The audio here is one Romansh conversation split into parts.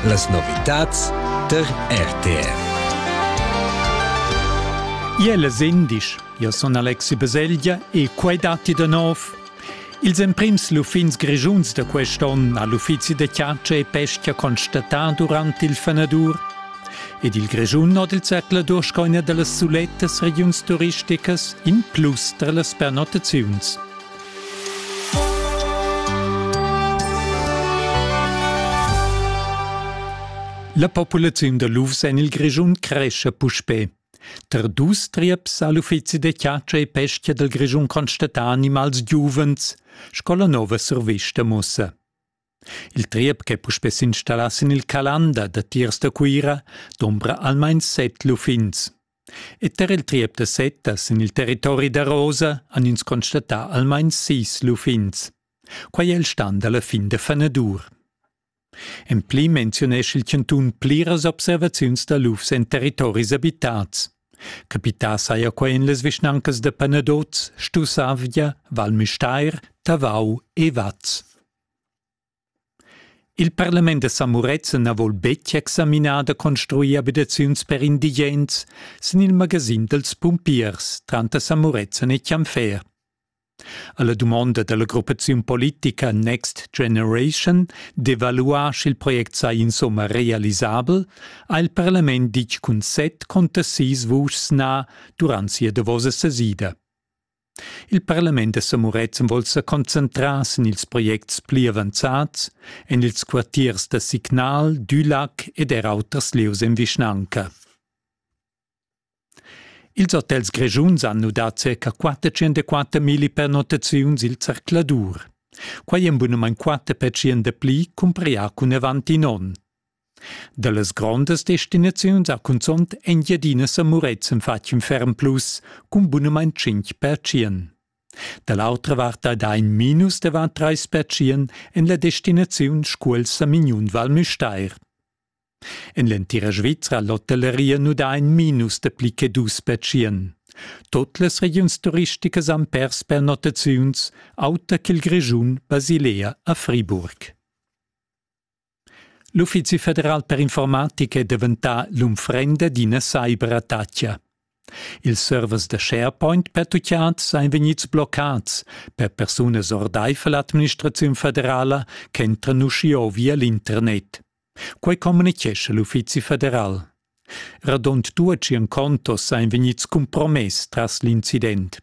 Las novitads tar RTR. Iel sindic, io son Alexi Beselgia e quai datti da nov. Ils emprims luffins grischuns da quest onn ha l'uffizi de Chiaccia e Pesca constatà durant il fenadur. Ed il Grischun hat il Zertler durch eine der sulettes Regions turisticas in plus tra las pernottaziuns. La populaziun da lufs en il Grischun cresce puspè. Tar dus trieps ha l'uffizi da chatscha e pesca dal Grischun constatà animals giuvens, sco la nova survista mussa. Il triep ch'è puspè s'installà sin il Calanda datiers da Cuira dombra almain set luffins. Ed er il triep da Seta sin il territori da Rosa han ins constatà almain sis luffins. Quai è il stan da la fin da fanadur. En pli menziunescha il chantun pliras observaziuns da lufs en territoris abitads. Capità saja quai en las vischnancas da Panadoz, Stussavgia, Val Müstair, Tavau e Vaz. Il parlament da Samuretzen na vol betg examinar da construir abitaziuns per indigens sin il magasin dals pumpiers tranter Samuretzen e Chianfer. Alla dumonda dalla gruppaziun politica Next Generation d'evaluar sch'il project sai insomma realisabel ha il parlament ditg cun set conta sis vuschs na durant sia davosa sesida. Il parlament da Samurezzan vol sa concentrar sin ils projects pli avanzats en ils quartiers da Signal, Dülac ed er auters lieus en vischnanca. Ils hotels grischuns han nudà circa 404 mili pernottaziuns il zercladur. Quai en bunamain quatter percent dapli cumprià cun avant in onn. Dallas grondas destinaziuns ha cunzont Engiadina e Murezzan fatg in ferm plus cun bunamain tschintg pertschien. Da l'autra vart ha dà in minus da var trais pertschien en la destinaziun Scuol-Samignun Val Müstair. En l'entira Svizra l'hotelleria nu dà in minus da pli che dus pertschien. Tot las regiuns turisticas han pers pernottaziuns, auter ch'il Grischun, Basilea a Friburg. L'Uffizi federal per informatica è daventà l'unfrenda d'ina cyber attacha. Ils servers da SharePoint pertutgads èn vegnids bloccads per persunas ordaifer l'administraziun federala ch'entran uschia via l'internet. Quai communitgescha l'Uffizi federal. Radund 200 contos èn vegnids cumpromess tras l'incident.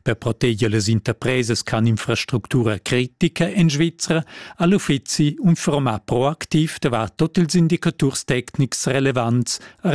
Per proteger las interpresas ch'han infrastructura critica en Svizra ha l'uffizi infurmà proactiv davart tut ils indicaturs tecnics relevants a